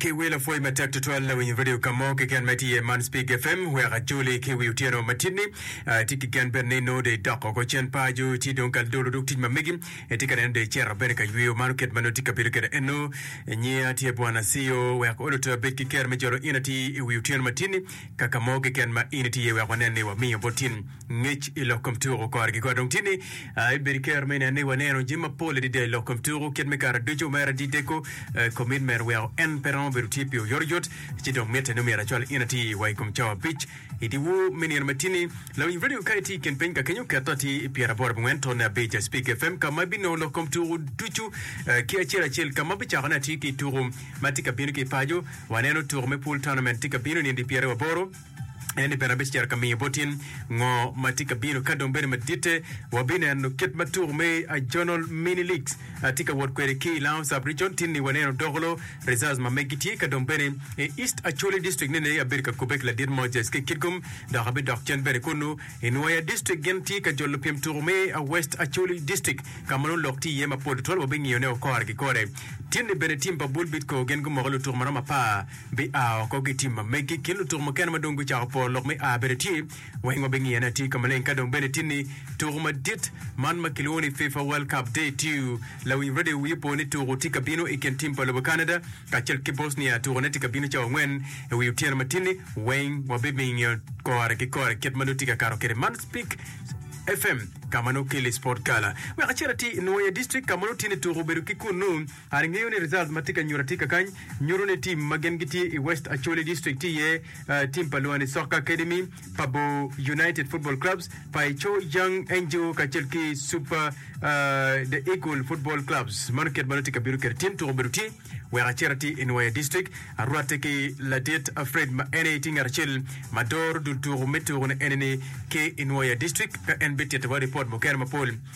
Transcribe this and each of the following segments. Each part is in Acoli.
Ki wi lapwoyi matek tutwal lawinyo radio ka mo keken ma tye man Speak FM wek ajoli ki wi otyeno matini tye ki gen bene ni nongo de idoko ko cen paco ci dong ka dolo duk tic ma megi tye ka neno de icero bene ka yweyo mano kit ma nongo tye ka bedo kwede eno nyiya tye bwana Siyo wek olo to abed ki ker me jolo in atir i wi otyeno matini kaka mo keken ma in itiye wek wanen ni wamiyo bot tin Ngec i lok kom tuko kore ki kore dong tye ni ibedo ki kero me inen ni waneno jami mapol adada i lok kom tuko kit me kare ducu. Mere adideko, komitment weko en pe romo bedo tye pi oyotoyot, ci dong mitte ni omyero acwal in atir wa i kom cawa abic i dyewor me nino ma tye ni. Lawiny redio ka itye i kin piny ka kenyo, ket atir i pyeraboro abongwen tone abic i Spik FM ka ma ibinongo lok kom tuko ducu ki acel acel ka ma abicako ni atir ki i tuko ma tye ka bino ki i paco. Waneno tuko me Pool Tournament tye ka bino i nino dyepyeraboro. en ni bene abic cito ka miyo bot in ngo ma tye ka bino ka dong bedo maditte wabineno kit ma tuko me Ajonal Mini Leagues tye ka wot kwede ki i Lounge Sub Region tinni waneno Dokolo Reserves ma megi tye ka dong bene i East Acholi District ni ni abedo ka kube ki ladit Moses ki Kitgum dok abidok cen bene kunu i Nwoya District gin tye ka jolo pyem tuko me West Acholi District ka ma nongo lok tye iye mapol tutwal wabingiyo ne okore ki kore tinni bene team pa Bull Bidco gin gumoko lutuko maromo apar Bia woko ki tim ma megi kin lutuku mukene ma dong gucako po lok me a bene tye. Weng wabingiye ni atir ka maleng ka dong bene tin ni tuku madit man ma kilwongo ni FIFA World Cup Day Two. Lawiny Radio wiye opo ni tuku tye ka bino i kin tim pa lobo Canada kacel ki Bosnia. Tukune tye ka bino cawa angwen i wi otyeno ma tin-ni. Weng wabibingiyo kore ki kore kit ma nongo tye ka kato kwede man Spik FM ka ma nongo keli Sport Gala. Wek acit atir i Nwoya District ka ma nongo tye ni tuku obedo ki kunnu. An angeyo ni results ma tye ka nyuto atika kany nyuto ni team ma gin gitye i West Acholi District tye iye team pa Luani Soccer Academy, pa Bor United Football Clubs, pa Eco Young Angel kacel ki Super The Eagle Football Clubs. Mano kit ma nongo tye ka bino kede team tuko bedo tye wek acit ati i Nwoya District arwatte ki ladit Fred ma en aye tye ngat acel ma doro dul tuko me tuko-ni eni-ni ki i Nwoya District ka en bititte wa report mukene mapol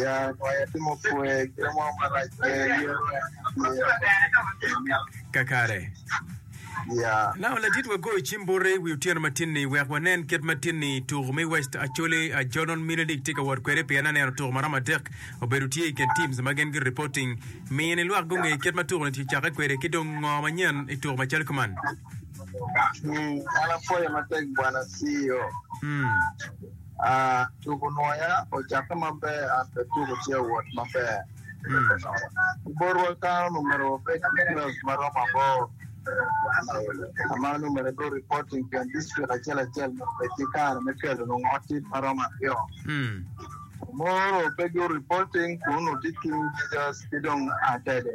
Ya waya tye ma opwe, gin mo marac pe yero atir. Kakare. Ya. Nao ladit wa goyo cim bute i wi otyeno matin ni wek wanen kit ma tin ni tuku me West Acholi Ajonon Mini League tye ka wot kwede pien aneno tuku maromo adek obedo tye i kin teams ma gin gi reporting miyo ni lwak gunge kit ma tuku ni ki cakke kwede ki dong ngo manyen i tuku macalo kuman. Hmm, an apwoyo matek bwana CEO. Hmm. Tugo nwoya ocakke maber an bene tugo tye wot maber. Botwa kany omyero wabed ki girauns ma romo aboro ka ma nongo myero igudo ripot i kin dictrik acel acel nyo obed ki kare me kelo nongo ot cik ma romo aryo. Moro pe gigudo ripot kun nongo tye ki jijos ki dong atede.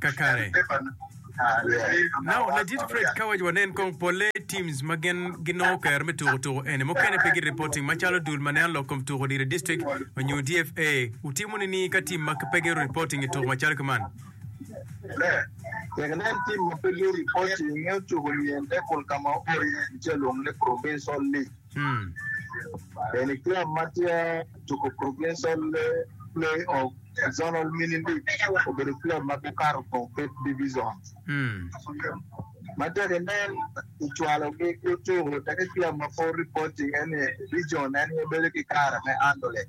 Kakare. Now, Ladit Fred ka waco wanen kong polle teams ma gin ginongo kero me tuko tuko eni mukene pe gi reporting macalo dul ma neno lok kom tuko diro district onyo DFA, wutimo nining ka team ma pe giru reporting ituko macalo ki man? Ber. Tek inen tim ma pe lyeri bot i nge ocuko nyen te kun ka ma opoto iye i tye lwongo ni Provincial League. Eni club ma tye tuko Provincial Play of Zonal Mini League obedo club ma gukato kong Fifth Division. Ma tek inen i cwalo gi ki ocuko te ki club ma pol reporting eni Region en aye bedo ki kare me Handle it.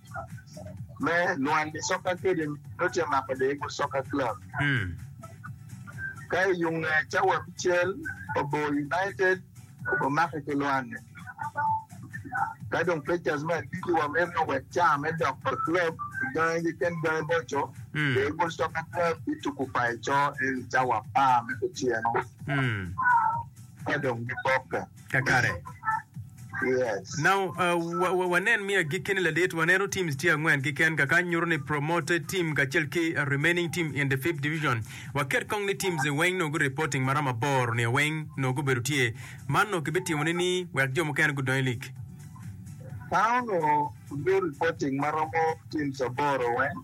me Lwand i Soccer Academy nongo tye ka mako Daegu Soccer Club. Ka i yo nge ca wa abicel, Obor United omake ki Lwand-ni. Ka dong Pacers me abili wa miti ni owek caa me dok pa club i gangi keken gangi boco, Daegu Soccer Club bituku paco en i ca wa apar me kutyeno ka dong gibokke. kakare. Yes. Now, uh, wa, wa, wanen mi agikki ni ladit, waneno teams tye angwen kiken kaka nyuto ni promoted team kacel ki remaining team in the fifth division. Waket kong ni teams ni weng nongo reporting maram aboro ni weng nongo gubedo tye. Man nongo kibityemo ni ni wek jo mukene gudong i lig. Town o do reporting maromo teams aboro weng.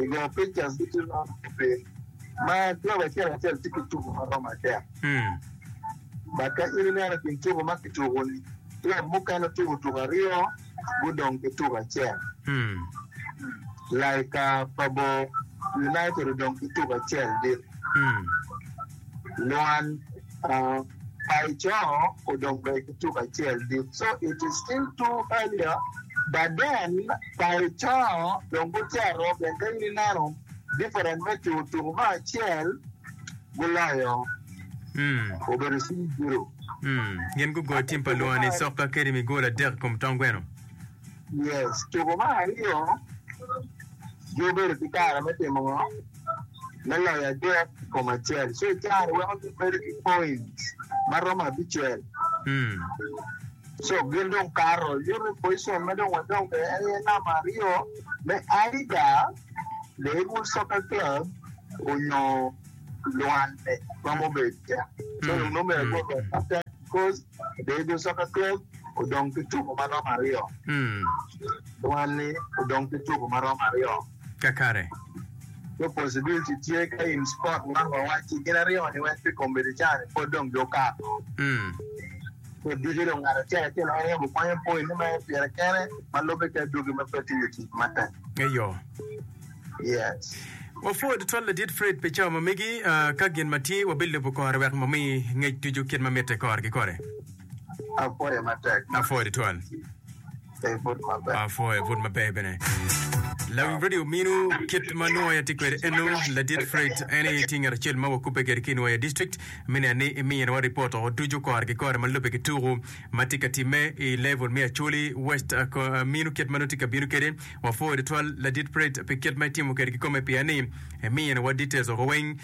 I go pictures ducu ma obedo ma club acel acel tye ki tuko ma romo adek. But ka in ineno i kin tuko ma kituko ni club mukene tuko tuko aryo gudong ki tuko acel. Like ka pa bo United odong ki tuko acel dit. Lwan, By Coo odong bene ki tuk acel dit so it is still too earlier but then by Coo dong gucito pien ka in ineno different me tuku tuku me acel guloyo obedo cing zero. Gin gugo tim pa lwoni sokka kadi mi gol adek i kom tong gweno. Tuko me aryo gi obedo ki kare me timo ngo me loyo adek i kom acel so icaro weko gi bedo ki point ma romo abicel so gin dong kato yuto pocicon ma dong wadong kwede en aye namba aryo me Aida Leirwood Soccer Club onyo Luanda ma mubedo ca so dong nongo myero gurwod matek. Obedo soka twec odong ki tuko ma romo aryo. Dwani odong ki tuko ma romo aryo. Kakare. Two possibility tye ka in spot man wawacci gin aryo ni wek pi kombeddi ca ni pwod dong gi okato. Pwod ducu dong ngat acel acel en yam okwanyo point ni ma en pire kene ma lube ki adwogi ma pe timo tic matek. Eyo. Wapwoo tutwal Ladit Fred pi cawa ma megi. Ka gin ma tye, wabilubo kore wek wami ngec ducu kit ma mitte kore ki kore. Apwoyo tutwal. Apwoyo but maber bene. Lawiny radio ominu kit ma nongo atye kwede eno Ladit Fred en aye tye ngat acel ma wakubbe kwede ki i Nwoya District me neno ni imiyonwa ripot o ducu kore ki kore ma lubbe ki tuku ma tye ka timme i level me Acholi West. Aminu kit ma nongo tye ka bino kwede Wapwoo tutwal Ladit Pratt pi kit ma itimo kwede kikome pia ni imiyo wa details woko weng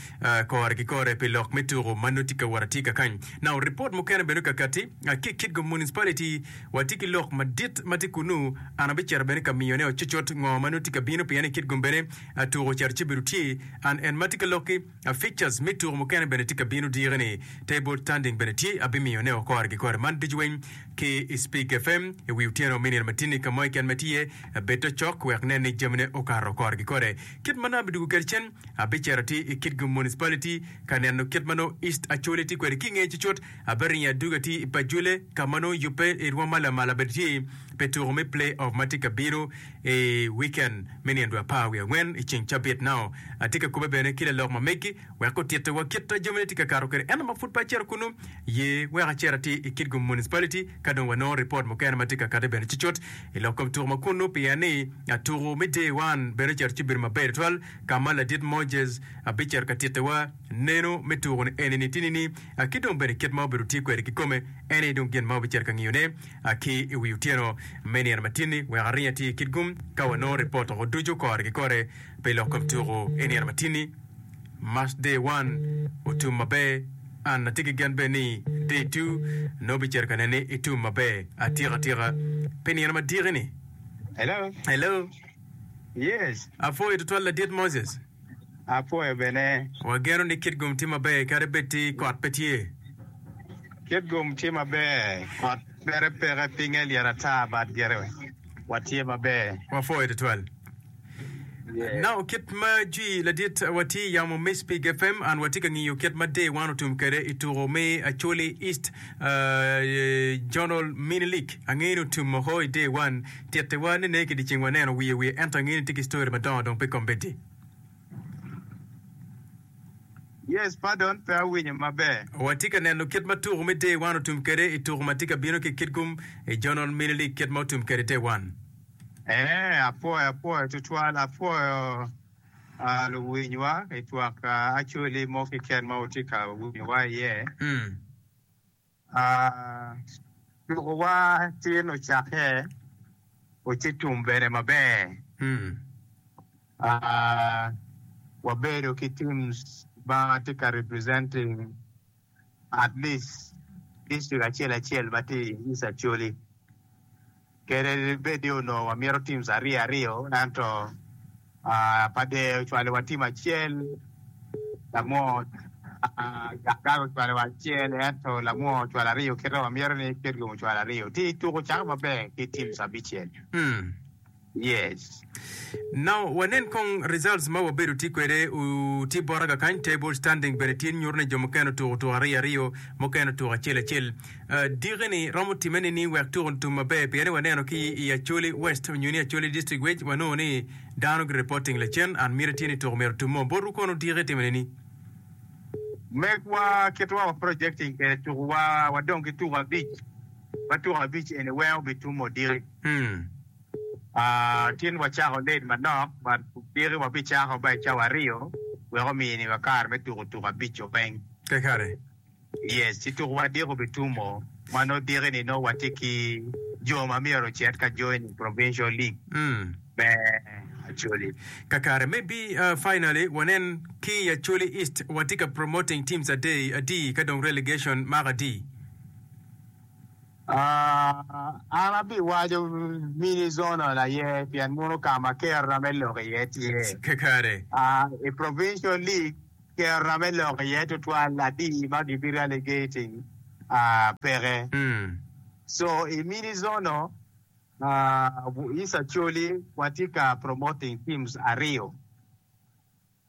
kore ki kore pi lok me tuku ma nongo tye ka wot atye ka kany nao report mukene bene kakati ki Kitgo Municipality watye ki lok madit ma tye kunu an abicito bene ka miyo ne o cucut ngo ma nongo tye ka bino pien i Kitgum bene tuku ocito ci bedo tye an en ma tye ka loki Ficas me tuko mukene bene tye ka bino dyeke ni. Table tanding bene tye, abimiyo ne o kore ki kore. Man ducu weng ki i Speak FM i wi otyeno me nino matini ka moya keken ma tye iye. Bed te cok wek nen ni jamine okato o kore ki kore. Kit ma nongo abidwogo kwede cen, abicito ati i Kitgum Municipality ka neno kit ma nongo East Acholi tye kwede. Ki i ngeye cucut, abiringo adugo ati i Pajule ka ma nongo yubbe i rwom ma lamal abedi tye pe tuko me Play Off ma tye ka bino i wiken. me nino dwe apar wiye angwen i ceng cabit nao. Atye ka kobbe bene ki lalok ma megi wek gutitte wa kit a jamine tye ka kato kwede ento ma pud pe acito kunu. Ye wek acit ati i Kitgum Municipality ka dong wa nongo report mukene ma tye ka kate bene cucut i lok kom tuku ma kunu pien ni atuku me day one bene ocito ci obedo maber tutwal ka ma ladit Moses a bicito ka titte wa neno me tuku ni eni ni tini ni a ki dong bene kit ma obedo ti kwede ki kome eni dong gin ma obicito ka ngiyo ne. a ki i wi otyeno me nino matinni wek aring atir i Kitgum ka wanongo ripot woko ducu kore ki kore pi lok kom tuku i nino matinni. March day one otum maber, an atye ki gen bene ni day two nongo bicito ka nene itum maber atika tika pi nino madiki ni. Hello. Hello. Yes. Apwoyo tutwal Ladit Moses. apwoyo bene. Wageno ni kit gum tye maber kadi bed ti kot pe tye. Kit gum tye maber kot pere peke pinge lyet ata bad gire watye maber. Wapwoyo tutwal. Nao kit ma Jwi ladit wa tye yamo mic pi GFM and watye ka ngiyo kit ma Day one otum kede i tuko me Acholi East Journal Mini League. Angeyo ni otum oko i Day one. Tittiwa ni ne ki diceng waneno wiye wiye ento angeyo ni tye ki story madongo dong pe kombeddi. Yes pardon pe awinyo maber. Watye ka neno kit ma tuku me Day One otum kwede i tuku ma tye ka bino ki i kitgum i Journal Mini League kit ma otum kwede i Day One. Eeh apwoyo apwoyo tutwal apwoyo aah luwinywa itwak aah actually mo keken ma wutye ka winyowa iye. Tukowa tin ocakke, oci tum bene maber. Wabedo ki teams ma tye ka representing at least district acel acel ma tye i East Acholi. Kadi bed ni onongo wamito teams aryo aryo, ento pa dee ocwalowa team acel, Lamwony Ganga ocwalowa acel, ento Lamwony ocwalo aryo kit ma wamito ni Kitgum ocwalo aryo. Ci tuko cako maber ki teams abicel. Now wanen kong results ma wabedo tye kwede u tye bota ka kany, table standing bene tye nyuto ni jo mukene otuko tuko ariyo ariyo mukene otuko acel acel. Diki ni romo timme nining wek tuko otum maber pien ni waneno ki i Acholi West onyo ni Acholi District Wage wanongo ni dano gi reporting lacen and miti tye ni tuko myero otum mo. Botwu kono diki itimo nining? Megwa kitewa wa projecting kwede tuko wa wadong ki tuko abic ma tuko abic eni weng obi tum odiki. Tin wacako late manok but kudiki wabicako ma i cawa aryo wek omi ni wa kare me tuko tuko abic o peng. Pe kare. Yes, ci tuko adek obitumo ma nongo diki ni nongo watye ki jo ma myero ocit ka join i provincial league me Acholi. Kakare me bi finally wanen ki i Acholi East watye ka promoting teams adei atii ka dong relegation mako atii. An abiwaco mini zonal aye pien mono ka ma kerra me lok iye tye. I provincial league, kerra me lok iye tutwal adi ma gibi relegating peke. So i mini zonal, is Acholi watye ka promoting teams aryo.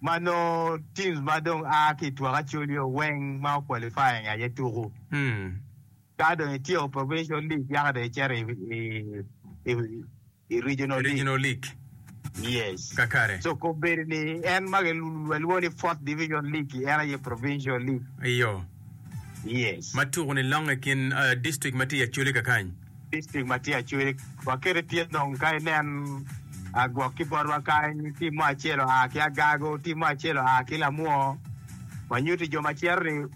ma nongo teams ma dong a ki i twak acolio weng ma o qualify nge aye tuku. Ka dong i tyeko provincial league yaka dong i cito i regional league. Yes. Kakare. So kop bedo ni en ma ki lwongo ni fourth division league en aye provincial league. Iyo. Yes. Ma tuku ni longe kin district ma tye i acolio kakany. District ma tye acwec wakete tye dong ka inen gwok ki botwa kany tim mo acel oa ki agago tim mo acel oa ki lamwo wanyuti jo macito ni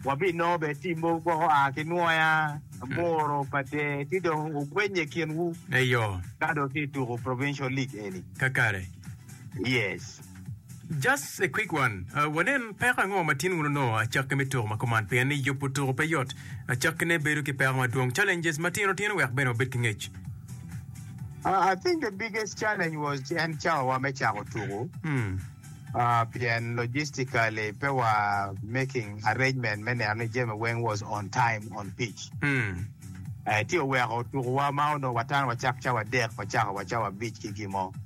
wabinongo bene tim mogo gwok oa ki nwoya, aboro, pader ci dong wugwenye i kinwu ka dong tye tuko provincial league eni. Kakare. Yes. Just a quick one, wanen peko ango ma tin wun onongo acakki me tuko ma kuman pien ni yubo tuko pe yot. Acakkine bedo ki peko madwong, challenges matino tino wek bene wabed ki ngec. Uh, I think the biggest challenge was en cawawa me cako tuku. Hmm. Uh, pien logistically pe wa making arrangement me neno ni jami weng was on time on pitch. Hmm. Eh, ti oweko tukuwa ma onongo watano wacak cawa adek, wacako wa cawa abic ki gin mo.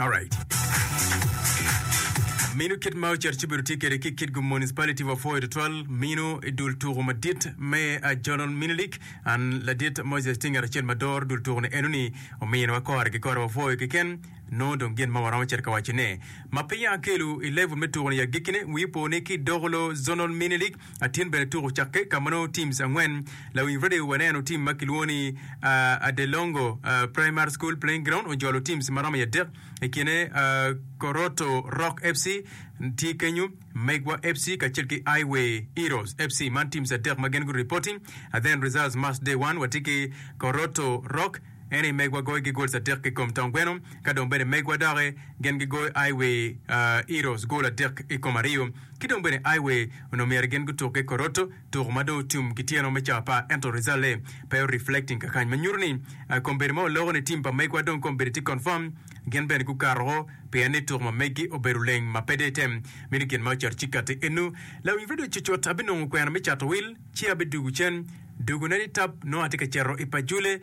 Alright. Minu kit ma ocito ci obedo tye kwede ki Kitgum Municipality wa pwoyo tutwal minu i dul tuku madit me ah, Jonal Minilik an ladit Moses tye ngat acel ma doro dul tuku ni eno ni omiyo nwa kore ki kore wa pwoyo keken nongo dong gin ma waromo cito ka waco ne ma piny akelu i level me tuku ni i agikkine wi po ni ki Dokolo Zonal Minilik Atin bene tuko cakke ka ma nongo teams angwen lawiny radio waneno team ma kilwongo ni uh, Adelongo uh, Primary School Playing Ground ojolo teams ma romo i adek i kine uh, Koroto Rock FC tye kenyo, Megwa FC kacel ki Highway Heroes FC man teams adek ma gen gu reporting uh, then results match day one watye ki Koroto Rock ene i Megwa goyo ki goals adek ki kom tong gweno ka dong bene Megwa doki gen gigoyo Highway uh, Heroes goal adek i kom aryo Ki dong bene I way onongo myero gin gutuk ki koroto tuko ma dong otum ki tyeno me cawa par ento result le pe o reflecting kakany ma nyuto ni kombeddi ma waloko ni team pa megwa dong kombeddi tye confirm gin bene gukato woko pien ni tuko ma meggi obedo leng ma pe dong item mini gin ma ocato ci kati enu. Lawiny radio cucut abinongo kwena me cato wil ci abidugu cen dugu ne ni tap nongo atye ka ceto I Pajule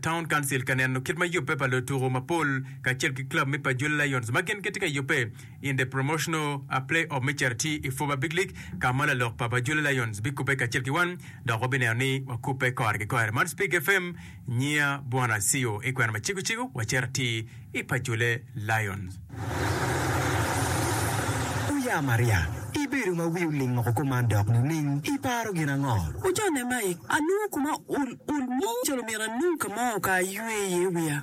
town council ka neno kit ma yubbe pa lotuko mapol kacel ki club me Pajule Lions ma gin gitye ka yubbe In the promotional play off me cito ti i Fuba Big League ka ma lalok pa Bajula Lions bikubbe kacel ki wan dok wabineno ni wakubbe kore ki kore. Man Speak FM, nyinga Bwana Asio. I kwena ma cego cego wacito ti i Pajule Lions. Wuya Maria, ibedo ma wi oling woko ko man dok nining? Iparo gin ango? Wujone Mike, anongo kuma ul ul mo calo myero anong ka mo ka aywe iye wiya.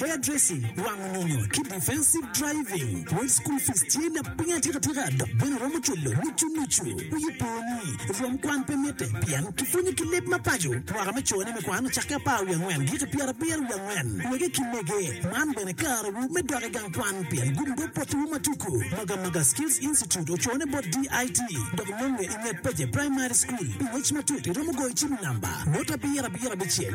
Hairdressing, wango nyonyo, ki Defensive Driving. Pwod school fees tye lapiny atikatika dok bene romo cwalo nucu nucu. Wiyi po ni rwom kwan pe mitte pien kipwonyo ki leb ma paco. Mwaka me cone me kwan ocakke apar wiye angwen giki pyerabiro wiye angwen. Wege ki mege, man bene karewu me dok i gang kwan pien gumgo potowu ma tuku. Magamaga Skills Institute ocone bot DIT dok nonge i nget Peje Primary School. Pi ngec matut iromo goyo cim i namba note abiro abiro abicel.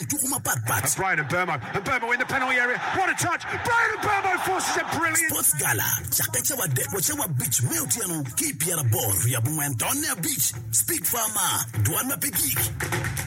i tuku mapatpat. Sports Gala cakke cawa adek wa cawa abic me otyeno ki i pyeraboro wi abongwen taun me abic. Speak Far Mar, Dwan ma pe gik.